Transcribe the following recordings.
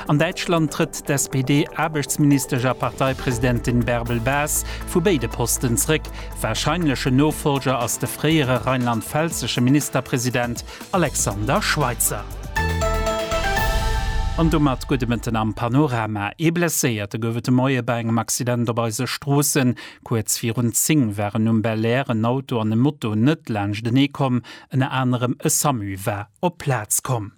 An Däitschland trëtt d'SPD-Aarbechtsministesch a Parteipresidentin Bärbel Bas vu béide Posten zréck. Warscheinleche Nofollger ass de fréiere rheinland-pfälzesche Ministerpresident Alexander Schweitzer. An domat gudde Mëtten am Panorama. Ee Blesséierte gouf et de Moie bei engem Accident op eise Stroossen. Kuerz virun 10 waren um Belair en Auto an e Moto net laanschtenee komm. Ënner anerem e Samu war op d'Plaz komm.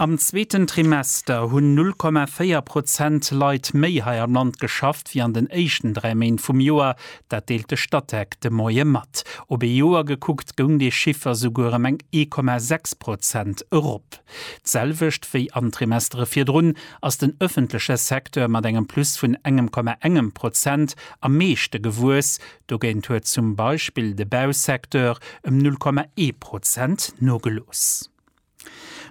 Am zweeten Trimester hunn 0,4 Prozent Leit méi hei am Land geschafft wéi an den éischten dräi Méint vum Joer. Dat deelt de Statec de Moie mat. Op ee Joer gekuckt goung dee Chiffer souguer ëm eng 1,6 Prozent erop. D'selwecht wéi an Trimestere virdrun ass den ëffentleche Secteur mat engem Plus vun engem Komma engem Prozent am meeschte gewuess. Dogéint huet zum Beispill de Bausecteur ëm 0,1 Prozent nogelooss.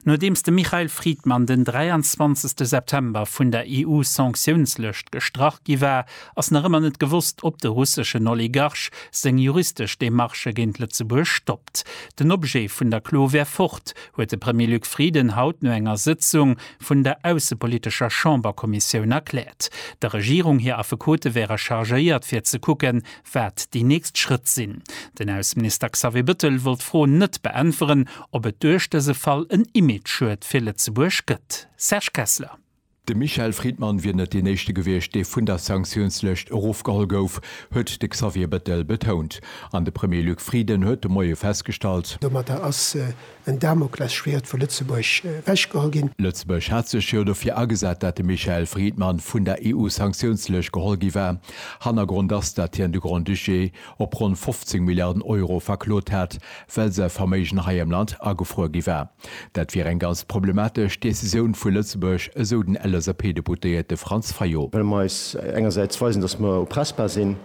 Nodeems de Michael Friedman den 23 September vun der EU-Sanktiounslëscht gestrach gi war, ass nach ëmmer net gewosst, ob de russeschen Oligarch seng juristesch Demarchë géint Lëtzebuerg stoppt. Den Objet vun der Klo wär fort, huet de Premier Luc Frieden haut no enger Sëtzung vun der aussepolitescher Chamberkommissioun erkläert. Der Regierung hir Affekote wäre chargéiert, fir ze kucken, wat déi nächst Schrëtt sinn. Den Ausseminister Xavier Bettel wollt d'Fro net beäntweren, ob et duerch dëse Fall en Image-Schued fir Lëtzebuerg gëtt. Serge Kessler. De Michel Friedmann wier net deen éischte gewiescht, dee vun der Sanktiounslëscht erofgeholl gouf, huet de Xavier Bettel betount. An de Premier Luc Frieden huet de Moie festgestallt. Domatter ass en Damoklesschwiert vu Lëtzebuerg ewechgeholl ginn. Lëtzebuerg hat sech jo dofir agesat, datt de Michael Friedman vun der EU-Sanktiounslëscht geholl gi war. Hannergrond ass, datt hien de Grand-Duché op ronn 15 Milliarden Euro verklot hat, well säi Verméigen hei am Land agefruer gi war. Dat wier eng ganz problematesch Decisioun vu Lëtzebuerg, esou den LSAP-Deputéierte Franz Fayot. Well mer eis engersäits weisen, datt mer oppressbar sinn.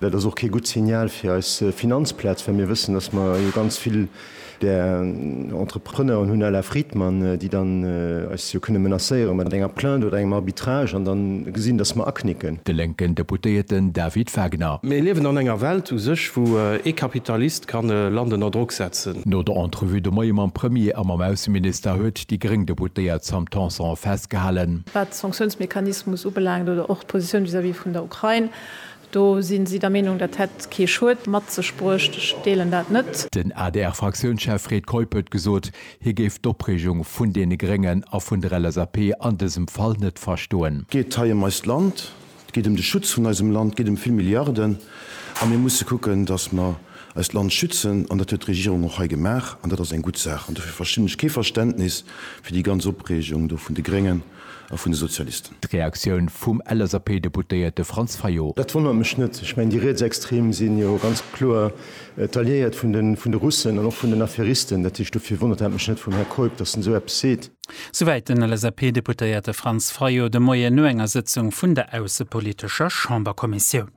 Dat ass och kee gutt Signal fir eis Finanzplaz, well mir wëssen, datt mer jo ganz vill Där Entrepreneuren hunn à la Friedman, déi dann eis jo kënne menacéiere mat enger Plainte oder engem Arbitrage an dann gesinn, dass mer aknicken. De lénken Deputéierten David Wagner. Mir liewen an enger Welt u sech, wou ee Kapitalist kann e Land ënner Drock setzen. No der Entrevue de Moie mam Premier a mam Ausseminister huet déi gréng Deputéiert Sam Tanson festgehalen, Wat Sanktiounsmechanismus ubelaangt oder och d'Positioun vis-à-vis vun der Ukrain, Do sinn si der Meenung, dat hätt kee Schued mat sech bruecht. Ech deelen dat net. Den ADR-Fraktiounschef Fred Keup huet gesot, hie géif d'Opreegung vun deene Gréngen a vun der LSAP an dësem Fall net verstoen. Et geet hei ëm eist Land, et geet ëm de Schutz vun eisem Land, et geet ëm vill Milliarden a mir musse kucken, datt mer eist Land schützen. An dat huet d'Regierung och hei gemaach an dat ass eng gutt Saach. An dofir verstinn ech kee Verständnis fir déi ganz Opreegung do vun de Gréngen. a vun de Sozialisten. D'Reaktioun vum LSAP-Deputéierte Franz Fayot. Dat wonnert mech net. Ech mengen, déi Rietsextrem si jo ganz kloer d'Alliéiert vun de Russen an och vun den Affäristen. Dat heescht, dofir wonnert dat mech net vum Här Keup, datt en esou eppes seet. Souwäit den LSAP-Deputéierte Franz Fayot de Moien no enger Sëtzung vun der aussepolitescher Chamberkommissioun.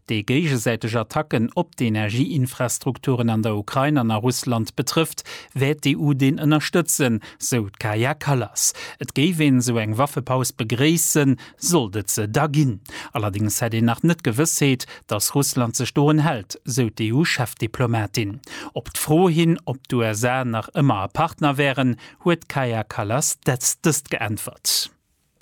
déi géigesäiteg Attacken op d'Energieinfrastrukturen an der Ukrain an a Russland betrëfft, wäert d'EU deen ënnerstëtzen, sou d'Kaja Kallas. Et géif een esou eng Waffepaus begréissen, sollt et se da ginn. Allerdéngs hätt een nach net d'Gewëssheet, datt Russland sech dorun hält, sou d'EU-Chefdiplomatin. Op d'Fro hin, ob d'USA nach ëmmer e Partner wären, huet d'Kaja Kallas dest dëst geäntwert.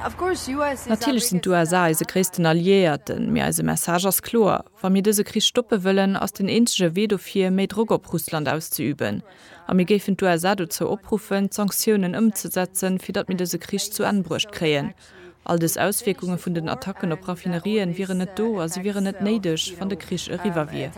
Natierlech sinn d'USA eise gréissten Alliéierten, mee eise Message ass kloer, Wa mir dëse Krich stoppe wëllen, ass den eenzege Wee dofir, méi Drock op Russland auszeüben. A mir géifen d'USA dozou opruffen, d'Sanktiounen ëmzesetzen, fir datt mir dëse Krich zu Enn bruecht kréien. All dës Auswierkunge vun den Attacken op Raffinerien wieren net do a si wieren net néideg, wann de Krich eriwwer wier.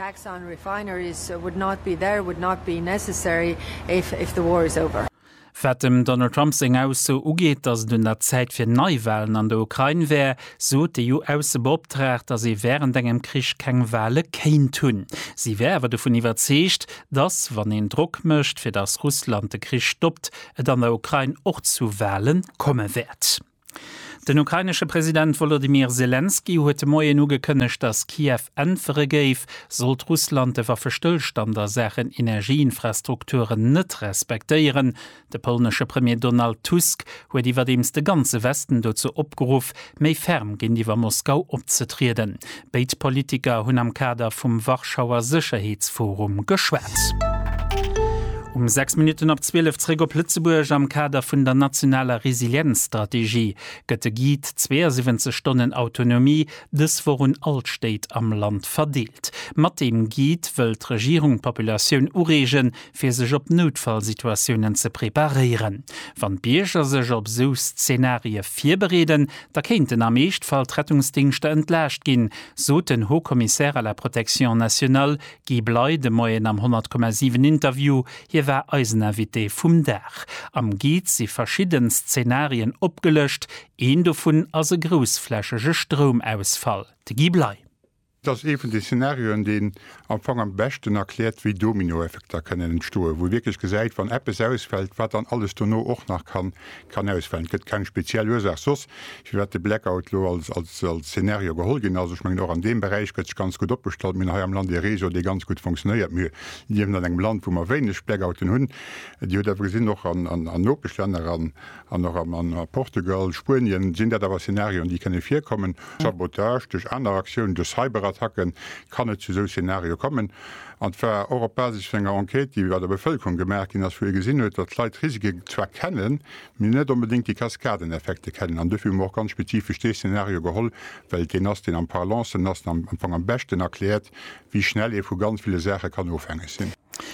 Wat dem Donald Trump seng Ausso ugeet, datt et un der Zäit fir Neiwalen an der Ukrain wär, sot de EU-Aussebeoptraagt, datt ee wärend engem Krich keng Wale kéint hunn. Si wär awer dovun iwwerzeegt, datt, wann een Drock mécht, fir datt Russland de Krich stoppt, et an der Ukrain och zu Wale komme wäert. Den ukrainesche President Wolodymyr Selenskyj huet de Moien ugekënnegt, datt Kiew äntwere géif, sollt Russland de Waffestëllstand a Saachen Energieinfrastrukturen net respektéieren. De polnesche Premier Donald Tusk huet iwwerdeems de ganze Westen dozou opgeruff, méi ferm géintiwwer Moskau opzetrieden. Béid Politiker hunn am Kader vum Warschauer Sécherheetsforum geschwat. Um 6 Minutten op 12 zréck op Lëtzebuerg, Am Kader vun der nationaler Resilienzstrategie gëtt de Guide 72 Stonnen Autonomie dës Woch un all d'Stéit am Land verdeelt. Mat deem Guide wëll d'Regierung d'Populatioun ureegen, fir sech op Noutfallsituatiounen ze preparéieren. Wann d'Bierger sech op esou Szenarie virbereeden, da kéinten am Eeschtfall d'Rettungsdingschter entlaascht ginn, sot den Haut-Commissaire à la protection nationale Guy Bley de Moien am 100,7 Interview. Hie war eisen Invité vum Dag. Am Guide si verschidden Szenarien opgelëscht, een dovun ass e groussflächege Stroumausfall. De Guy Bley. Et ass ee vun de Szenarioen, deen am Fong am beschten erkläert, wéi Dominoeffekter kënnen entstoen, wou ee wierklech gesäit, wann eppes ausfält, wat dann alles dono och nach kann ausfalen. Et gëtt keng speziell Ursaach soss, firwat de Blackout elo als Szenario geholl ginn ass. Ech mengen, och an deem Beräich gëtt sech ganz gutt opgestallt. Mir hunn hei am Land ee Réseau, dee ganz gutt funktionéiert. Mir liewen an engem Land, wou mer wéineg Blackouten hunn. Dir hutt awer gesinn, och an Nopeschlänner, An och a Portugal, Spuenien sinn dat awer Szenarioen, déi kënne virkommen. Sabotage duerch aner Aktiounen, duerch Cyberattacke kann et zu esou Szenario kommen. An zwar och op Basis vun enger Enquête, déi bei der Bevëlkerung gemaach ginn ass, wou ee gesinn huet, datt d'Leit d'Risike zwar kennen, mee net onbedéngt déi Kaskadeneffekte kennen. An dofir hu mer och ganz spezifesch dee Szenario geholl, well et deen ass, deen am parlancen ass an am Fong am beschten erkläert, wéi schnell ee vu ganz ville Saache kann ofhängeg sinn.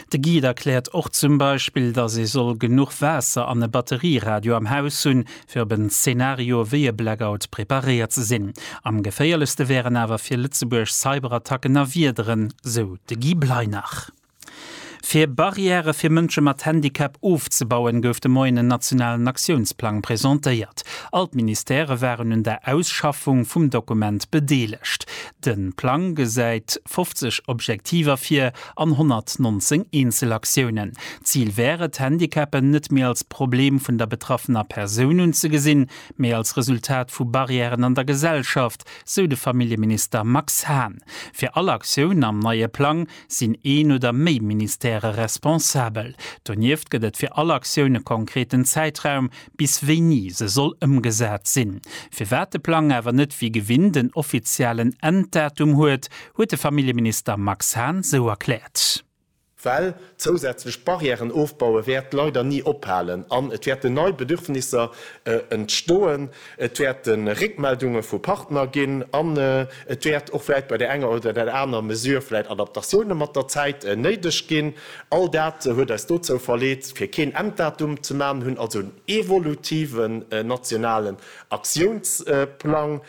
De Guide erkläert och zum Beispill, dass ee soll genuch Waasser an e Batterieradio am Haus hunn, fir op en Zeenario wéi e Blackout preparéiert ze sinn. Am geféierlechste wären awer fir Lëtzebuerg Cyberattacken a Wiederen, sou de Guy Bleinach. Fir Barrièrë fir Mënsche mat Handicap ofzebauen, gouf de Moien en nationalen Aktiounsplang presentéiert. All d'Ministèrë waren un der Ausschaffung vum Dokument bedeelegt. De Plang gesäit 50 Objektiver vir an 119 Eenzelaktiounen. D'Zil wär et, Handicapen net méi als Problem vun der betraffener Persoun unzegesinn, mee als Resultat vu Barrièren an der Gesellschaft, sou de Familljeminister Max Hahn. Fir all Aktioun am neie Plang sinn een oder méi Ministèrë responsabel. Donieft gëtt et fir all Aktioun e konkreten Zäitraum, bis wéini se soll ëmgesat sinn. Firwat de Plang awer net wéi gewinnt en offiziellen Enddatum huet, huet de Familljeminister Max Hahn esou erkläert. Well zousätzlech Barrièren ofbaue wäert leider ni ophalen an et wäerten nei Bedürfnisser entstoen. Et wäerte Réckmeldunge vu Partner ginn an et wäert och vläit bei der enger oder der aner Mesure vläit Adaptatioune mat der Zäit néideg ginn. All dat huet eis dozou verleet, fir keen Enddatum ze man, hunn also en evolutiven nationalen Aktiounsplang,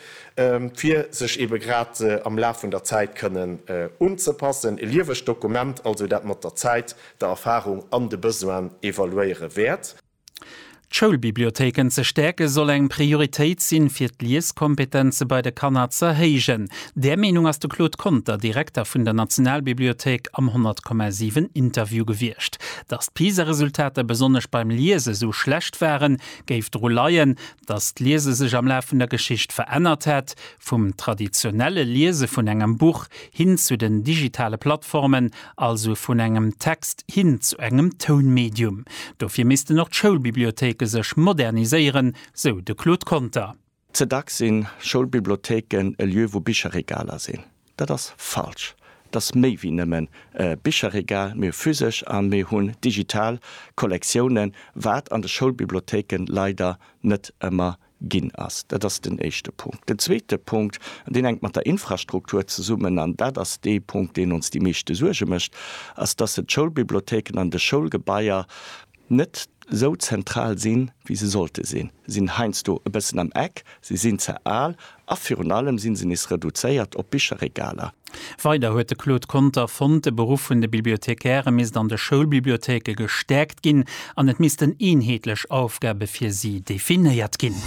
fir sech ebe grad am Laf vun der Zäit kënnen unzepassen. E liewegt Dokument also, dat mat der Zäit, der Erfahrung an de Besoinen evaluéiere wäert. D'Schoulbibliothéiken ze stäerke soll eng Prioritéit sinn, fir d'Lieskompetenze bei de Kanner z'erhéijen. Där Meenung ass de Claude Conter, Direkter vun der Nationalbibliothéik am 100,7 Interview gewiescht. Datt d'Pisa-Resultater besonnesch beim Liese sou schlecht waren, géif dru leien, dass d'Liese sech am Laf vun der Geschicht verännert hätt, vum traditionelle Liese vun engem Buch hin zu den digitale Plattformen, also vun engem Text hin zu engem Tounmedium. Dofir missten och d'Schoulbibliothéike sech moderniséieren, sou de Claude Conter. Ze dacks sinn Schoulbibliothéiken e Lieu wou Bicherregaler sinn. Dat ass falsch. Et ass méi wéi nëmmen e Bicherregal. Mir hu physesch a mir hunn digital Kollektiounen, wat an de Schoulbibliothéike leider net ëmmer ginn ass. Dat ass den éischte Punkt. Den zweete Punkt, an deen hänkt mat der Infrastruktur zesummen, an dat ass dee Punkt, deen ons déi meeschte Suerge mécht, ass, dass se d'Schoulbibliothéiken an de Schoulgebaier, net esou zentral sinn, wéi se sollte sinn. Se sinn heiansdo e bëssen am Eck, se sinn ze al a virun allem si se nees reduzéiert op Bicherregaler. Weider huet de Claude Conter fonnt, de Beruff vun de Bibliothekairen misst an de Schoulbibliothéike gestäerkt ginn an et missten eenheetlech Aufgabe fir si definéiert ginn.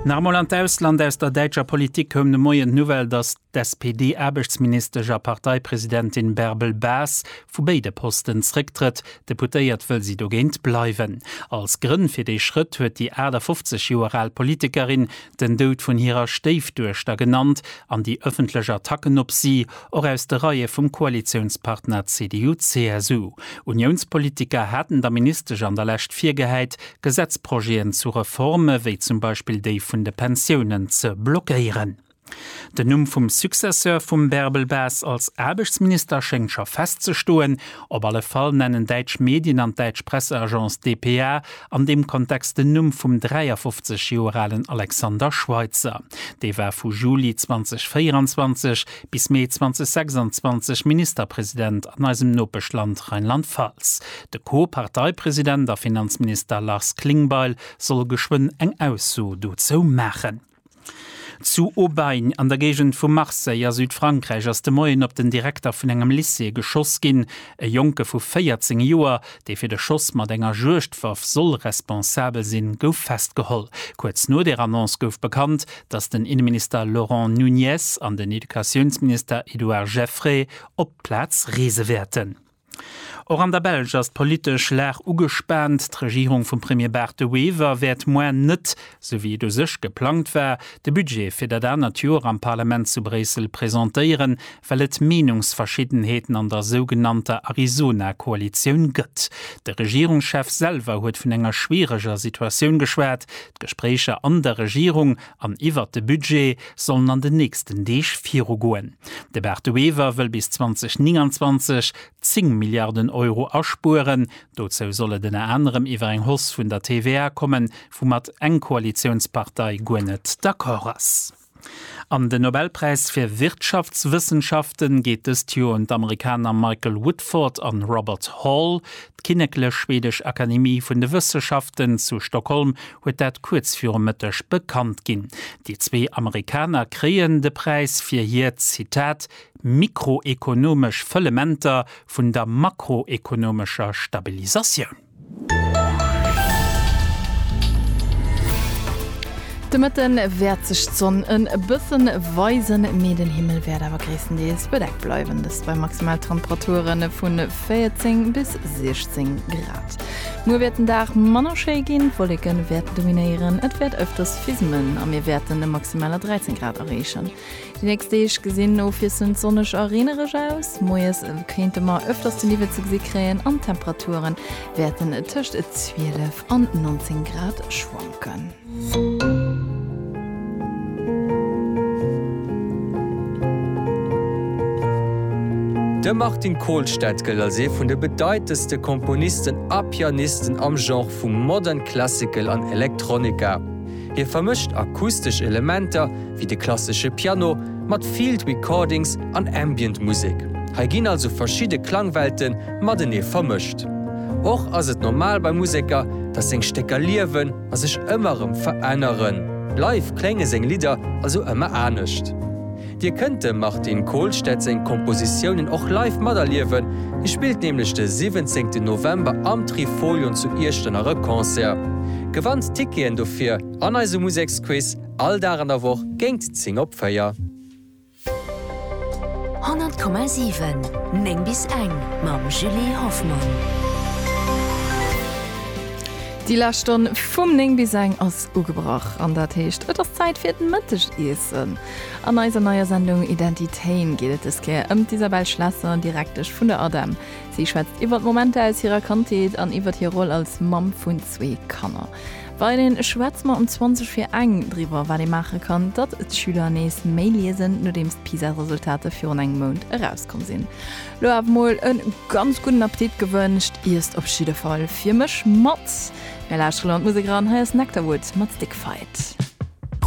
Nach emol an d'Ausland, Aus der däitscher Politik koum de Moien d'Nouvelle, datt. D'SPD-Aarbechtsministesch a Parteipresidentin Bärbel Bas vu béide Posten zrécktrëtt, Deputéiert wëll si dogéint bleiwen. Als Grënn fir dee Schrëtt huet déi 58 Joer al Politikerin den Doud vun hirer Stéifduechter genannt an déi ëffentlech Attacken op si, och aus de Reie vum Koalitiounspartner CDU-CSU. Uniounspolitiker haten der Ministesch an der Lescht virgehäit, Gesetzprojeten zu Reforme wéi zum Beispill déi vun de Pensiounen ze blockéieren. Den Numm vum Successeur vum Bärbel Bas als Aarbechtsminister schéngt scho festzestoen. Op alle Fall nennen däitsch Medien an d'däitsch Presseagence dpa an deem Kontext den Numm vum 53 Joer alen Alexander Schweitzer. Dee war vu Juli 2024 bis Mee 2026 Ministerpresident an eisem Nopeschland Rheinland-Pfalz. De Co-Parteipresident a Finanzminister Lars Klingbeil soll geschwënn eng Ausso dozou maachen. Zu Aubagne an der Géigend vu Marseille a Südfrankräich ass de Moien op den Direkter vun engem Lycée geschoss ginn. E Jonke vu 14 Joer, dee fir de Schoss mat enger Juegdwaff soll responsabel sinn, gouf festgeholl. Kuerz no der Annonce gouf bekannt, datt den Inneminister Laurent Nunez an den Educatiounsminister Edouard Geffray op d'Plaz reese wäerten. Och an der Belsch ass d'politesch Lag ugespaant. D'Regierung vum Premier Bart De Wever wäert moar net, sou wéi et u sech geplangt war, de Budget fir dat anert Joer am Parlament zu Bréissel presentéieren, well et Meenungsverschiddenheeten an der sougenannter Arizona-Koalitioun gëtt. De Regierungschef selwer huet vun enger schwiereger Situatioun geschwat. D'Gespréicher an der Regierung an iwwert de Budget sollen an den nächsten Deeg virugoen. De Bart Wever wëll bis 2029 zéng Milliarden Euro aspueren. Dozou soll et ënner anerem iwwer eng Hausse vun der TVA kommen, woumat eng Koalitiounspartei guer net d'accord ass. An den Nobelpräis fir Wirtschaftswëssenschaften geet dëst Joer un d'Amerikaner Michael Woodford an Robert Hall. D'Kinneklech Schwedesch Akademi vun de Wëssenschaften zu Stockholm huet dat kuerz viru Mëtteg bekannt ginn. Déi zwee Amerikaner kréien de Präis fir hir, Zitat, mikroekonomesch Fëllementer vun der makroekonomescher Stabilisatioun. De Mëtte wäert sech d'Sonn e bësse weisen, mee den Himmel wäert awer gréisstendeels bedeckt bleiwen, dëst bei Maximaltemperaturen vu. 14 bis 16 Grad. Muer wäert den Dag manner schéi ginn, Wolleke wäerten dominéieren, et wäert ëfters fismen a mir wäerten e Maximal a 13 Grad erreechen. Déi nächst Deeg gesinn nowissend sonneg a reenereg aus, moies kéinte mer ëfters de Niwwel ze gesi kréien an d'Temperature wäerten tëscht 12 an 19 Grad schwanken. De Martin Kolstad gëllt als ee vun de bedeitendste Komponisten a Pianisten am Genre vu Modern Classical an Electronica. Hie vermëscht akustesch Elementer, wéi de klassesche Piano, mat Field Recordings an Ambient Musek. Hei ginn also verschidde Klangwelte matenee vermëscht. Och ass et normal bei Museker, datt seng Stécker liewen. a sech ëmmer erëm veränneren, bleiw klénge seng Lidder also ëmmer anescht. Dir kënnt dem Martin Kolstad seng Kompositiounen och live materliewen, hie spillt nämlech de 17 November am Trifolion zu Iechternach e Concert. Gewannt d'Ticketen dofir an eisem Museksquiz all Dag an der Woch géingt 10 op 4. 100,7 9 bis eng mam Julie Hoffmann. Déi lescht Stonn vum 9 bis eng ass ugebrach an dat heescht et ass Zäit fir d'Mëttegiessen. An eiser neier Sendung Identitéen geet et des Kéier ëm d'Isabelle Schlesser, Direktesch vun der ADEM. Si schwätzt iwwert Momenter aus hirer Kandheet an iwwert hir Roll als Mamm vun zwee Kanner. Bei den schwätze mer um 20 fir eng driwwer, wat ee maache kann, datt d'Schüler nees méi liesen, nodeems d'PISA-Resultater virun engem Mount erauskomm sinn. Lo awer mol e ganz gudden Appetit gewënscht. Iesst op jidde Fall fir mech mat. Mir lauschteren an d'Musek eran. Hei ass Nectarwood mat Stick Fight.